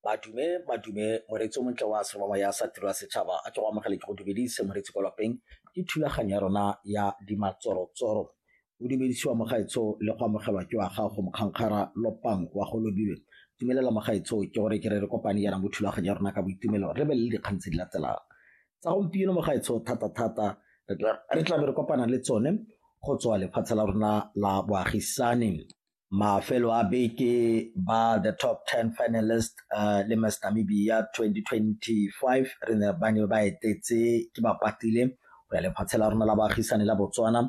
Madume, madume, moreetsi o montle wa serobangwa ya sa tiro ya setšhaba a ke go amogele ke go dumedise moreetsi kwa lapeng ke thulaganyo ya rona ya dimatsorotsoro o dumedisiwa mogaetsho le go amogelwa ke wa gago mokgankgara lopang wa go lobilwe tumelela mogaetsho ke gore ke re re kopane yana mo thulaganyo ya rona ka boitumelo re be le dikgang tse di latelang tsa gompieno mogaetsho thata-thata re tlabe re kopana le tsone go tswa lefatshe la rona la boagisane mafelo a beke ba the top 10 finalist uh, le Miss Namibia 2025 re ne ba ne ba etetse ke ba patile go ya lefatshe la rona la baagisane la Botswana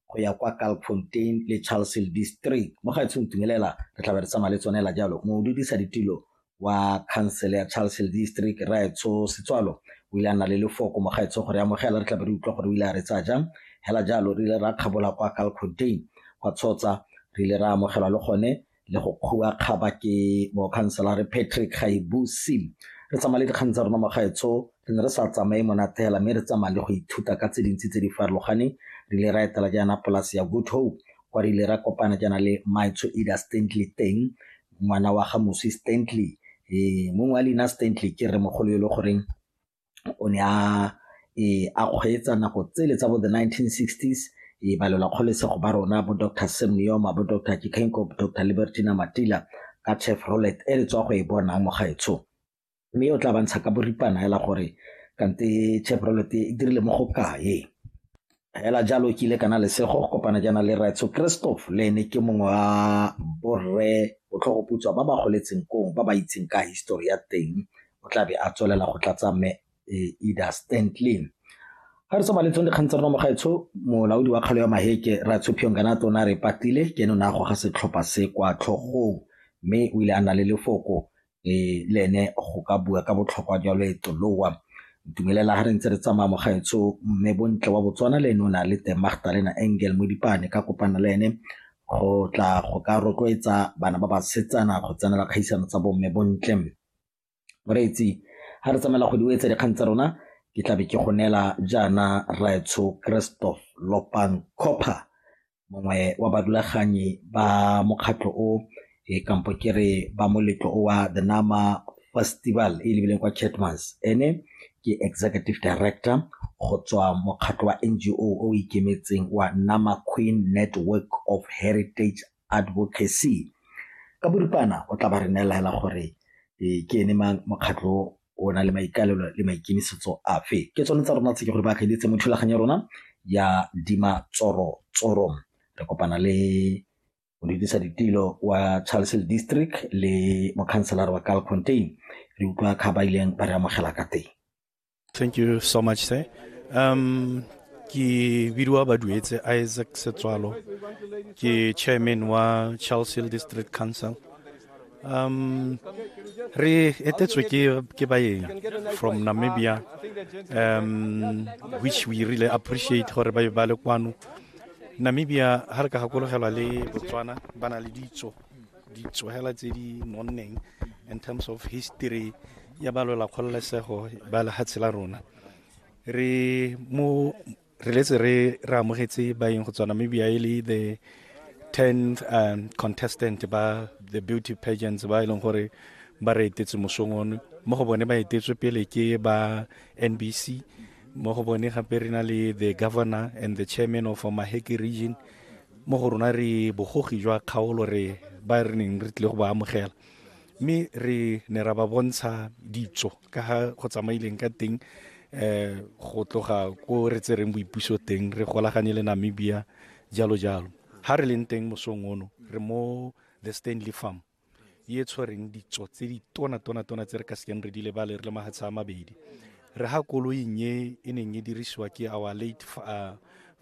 go ya kwa Kalkfontein le Charlesville district mo ga etseng tumelela re tla be re tsamaya le tsone la jalo mo dudisa ditilo wa khansele ya Charleshill District, Rraetsho Setswalo o ile a nna le lefoko mo gaetsho gore ya amogela re tla be re utlwa gore o ile a re tsaya jang. Hela jalo re ile ra kgabola kwa Kalkfontein kwa Tshotsa re ile ra amogelwa le gone le go kgua kgaba ke mokhanselare Patrick Gaibusi. Re tsamaya le dikgang tsa rona mo gaetsho re ne re sa tsamaye monate hela mme re tsamaya le go ithuta ka tse dintsi tse di farologaneng re ile ra etela jaana polase ya Good Hope kwa re ile ra kopana jaana le Maitsho Ida Stanley teng Ngwana wa ga Moswi Stanley, ee mongwe wa leina Stanley ke rremogolo e le goreng o ne a ee a kgweetsa nako tsele tsa bo the nineteen sixties ee balelwa kgololesego ba rona bo Doctor Sam Nuoma, bo Doctor Doctor Libertina Matila ka Chevrolet e le tswa go e bonang mo gaetsho. mme o tla ba ntsha ka boripana hela gore kante Chevrolet e dirile mo go kae hela jalo ke ile kana lesego go kopana jaana le Raitso Christoph le ene ke mongwe wa borre botlhogoputswa ba ba goletseng kong ba ba itseng ka histori ya teng o tla be a tswelela go tlatsa me e, Ida Stanley ga re tsoma letsong dikgang tsa rona mogaetsho molaodi wa kgalo ya maheke ratsho phiongana tona re patile ke ene o ne a goga setlhopha se kwa tlhogong mme o ile a na le lefoko le ene go ka bua ka botlhokwa jwa loeto lowa ntumelela ha re ntse re tsamaya mo gaetsho mme bontle wa botswana le ene o na le teng magdalena angel mo dipane ka kopana le ene go tla go ka rotloetsa bana ba basetsana go tsenela kgaisano tsa bomme bontle moreetsi ga re tsamaela go diwetsa dikgang tsa rona ke tlabe ke go neela jaana raetsho christoph lopang copper mongwe wa badulaganyi ba mokgatlho o e kampo ke re ba moletlo o wa the nama festival e lebileng kwa chatmans ene ke executive director go tswa mokgatlho wa ngo o ikemetseng wa nama queen network of heritage advocacy ka boripana o tla ba re neela hela gore ke ene mang mokgatlho o na le maikalelo le maikemisetso afe ke tsone tsa rona tse ke gore ba akgeditse mo thulaganyo ya rona ya dima tsoro tsoro re kopana le modudisa ditilo wa charlesel district le mokhanselara wa cal contain re utlwa kga ba ileng ba re amogela ka teng thank you so much sir um ke bidiwa baduetse isaac setswalo ke chairman wa charlesel district council Um, re etetswe ke, ke baeng from Namibia, um, which we really appreciate gore ba ba le kwano. Namibia, ha re ka gakologelwa le Botswana, ba na le ditso, ditso hela tse di nonneng in terms of history ya ba lwela kgololesego ba lehatshe la rona. Re mo re letse re re amogetse baeng go tswa namibia e le the 10th um, contestant ba the beauty pageants ba e leng gore ba re etetse mosong ono mo go bone ba etetswe pele ke ba nbc mo go bone gape re na le the governor and the chairman of maheki region mo go rona re bogogi jwa kgaolo re ba re neng re tlile go ba amogela mme re ne ra ba bontsha ditso ka ga go tsamaileng ka teng um go tloga ko re tsereng boipuso teng re golaganye le namibia jalo jalo ha re leng teng mosong ono re mo the stanley farm e tshwereng ditso tse di tona tona tona tse re ka sekeng re di lebale re le mahatsha a mabedi re ha koloing e e neng e dirisiwa ke our late uh,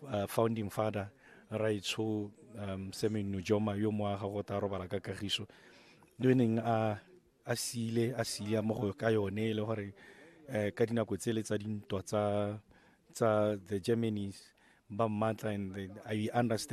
uh, founding father raitsho um semeng nojoma yo moaga go ta robala ka kagiso neng a a siile a siile mo go ka yone e le gore um ka dinako tsele tsa dintwa tsa tsa the germany's ba mmatla and i understand